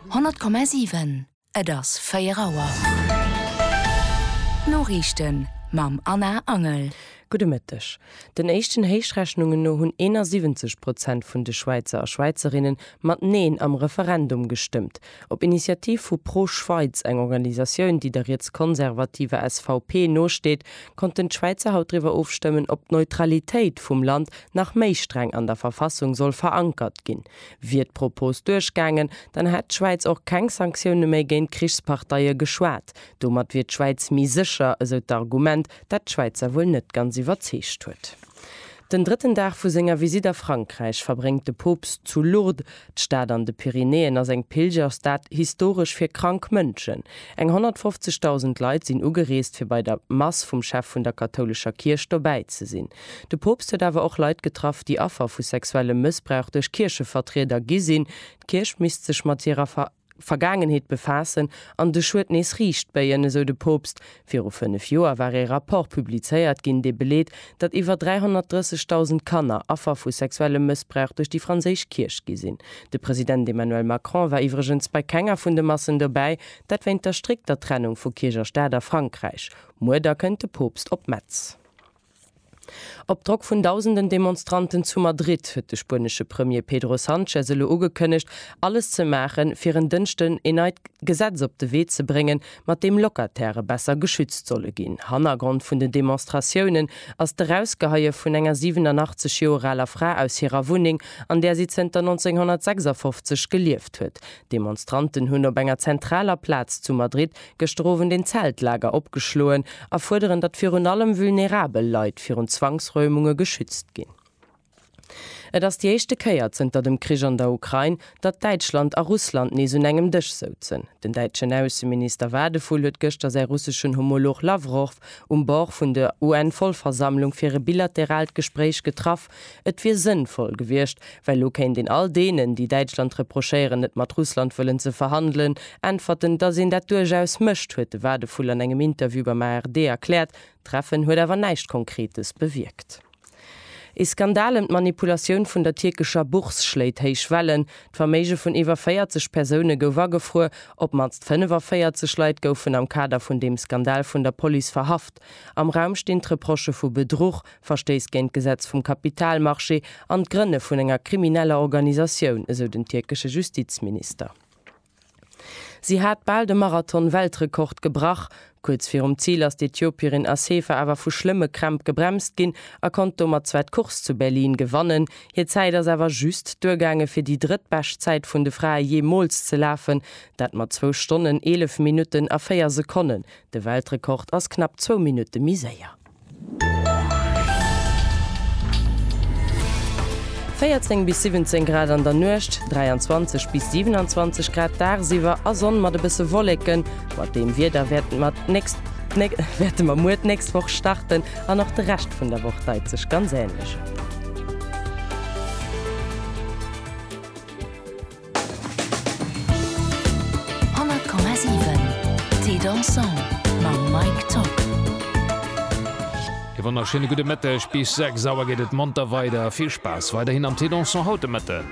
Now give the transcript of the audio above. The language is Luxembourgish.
100,7 Et ass 4 Auer. D'Noriichten mam Anna Angel. Gudde Mëtteg. Den éischten Héichrechnungen no hunn 71 Prozent vun de Schwäizer a Schwäizerinne mat Neen am Referendum gestëmmt. Op Initiativ vu Pro Schweiz, eng Organisatioun, déi der rietskonservativer SVP nosteet, konnten d'Schwäizer haut driwwer ofstëmmen, ob d'Neutralitéit vum Land nach méi streng an der Verfassung soll verankert ginn. Wier d'Propos duerchgaangen, dann hätt d'Schwäiz och keng Sanktioune méi géint Krichsparteie geschwat. Domat wier d'Schwäiz méi sécher, esou d'Argument, dat d'Schwäizer wuel net ganz iwwerzeegt huet. Den drëtten Dag vu senger Visitt a Frankräich verbréngt de Poopst zu Lourdes. D'Stad an de Pyrenäen ass eng Pilgerstad, historesch fir krank Mënschen. Eng 150.000 Leit sinn ugereest, fir bei der Mass vum Chef vun der kathoulescher Kierch dobäi ze sinn. De Poopst huet awer och Leit getraff, déi Affer vu sexuellem Mëssbrauch duerch Kierchevertrieder gi sinn. D'Kierch misst sech mat hirer Vergaangenheet befaassen an de Schued nees riicht béien, esou de Poopst. Viru fënnef Joer war ee Rapport publizéiert ginn, dee beleet, datt iwwer 330.000 Kanner Affer vu sexuellem Mëssbrauch duerch déi franséisch Kierch gi sinn. De President Emmanuel Macron war iwwregens bei kenger vun de Massen dobäi, dat wéint der strikter Trennung vu Kierch a Staat a Frankräich. Muer da kënnt de Poopst op Metz. Op Drock vun dausenden Demonstranten zu Madrid huet de spuenesche Premier Pedro Sanchez elo ugekënnegt, alles ze maachen, fir en Dënschden een neit Gesetz op de Wee ze bréngen, mat deem Locatairë besser geschützt solle ginn. Hannergrond vun den Demonstratiounen ass d'Erausgeheie vun enger 87 Joer aler Fra aus hirer Wunneng, an där si zënter 1956 gelieft huet. D'Demonstranten hunn op enger zentraler Plaz zu Madrid Gëschter Owend een Zeltlager opgeschloen a fuerderen, datt virun allem vulnerabel Leit virun Zwangsräumunge geschützt ginn. Et ass déi éischte Kéier zënter dem Krich an der Ukrain, datt Däitschland a Russland nees un engem Dësch souzen. Den däitschen Ausseminister Wadephul huet gëschter säi russeschen Homolog Lawrow um Bord vun der UN-Vollversammlung fir e bilateraalt Gespréich getraff. Et wier sënnvoll gewiescht, well lo kéint een all deenen, déi Däitschland reprochéieren, net mat Russland wëllen ze verhandelen, äntwerten, datt een dat duerchaus mécht, huet de Wadephul an engem Interview beim ARD erkläert. D'Treffen huet awer näischt Konkretes bewierkt. Ee Skandal ëm d'Manipulatioun vun der tierkescher Bourse schléit héich Wellen. D'Verméige vun iwwer 40 Persoune gouf agefruer. Op d'mannst 45 Leit goufen am Kader vun deem Skandal vun der Police verhaft. Am Raum stinn d'Reprochë vu Bedruch, Verstéiss géint d'Gesetz vum Kapitalmarché an d'Grënne vun enger krimineller Organisatioun, esou den tierkesche Justizminister. Si hat bal de Marathon-Weltrekord gebrach. Kuerz virum Zil ass d'Ethiopierin Assefa awer vu schlëmme Krämp gebremst ginn a konnt domat zwar d'Course zu Berlin gewannen. Hir Zäit ass awer just duergaange fir déi drëttbescht Zäit vun de Frae jeemools ze lafen, dat mat zwou Stonnen, eelef Minutten a véier Sekonnen. De Weltrekord ass knapp zwou Minutte méi séier. 14 bis 17 Grad an der Nuecht, 23 bis 27 Grad dagsiwwer a Sonn mat e bësse Wolleken. Mat deem Wieder wäerte mer d'nächst wäerte mer muer d'nächst Woch starten an och de Rescht vun der Woch deit sech ganz änlech. E wonnerschéine gudde Mëtteg. Bis 6 Auer geet et monter weider. Vill Spaass weiderhin am Téléthon haut de Mëtten.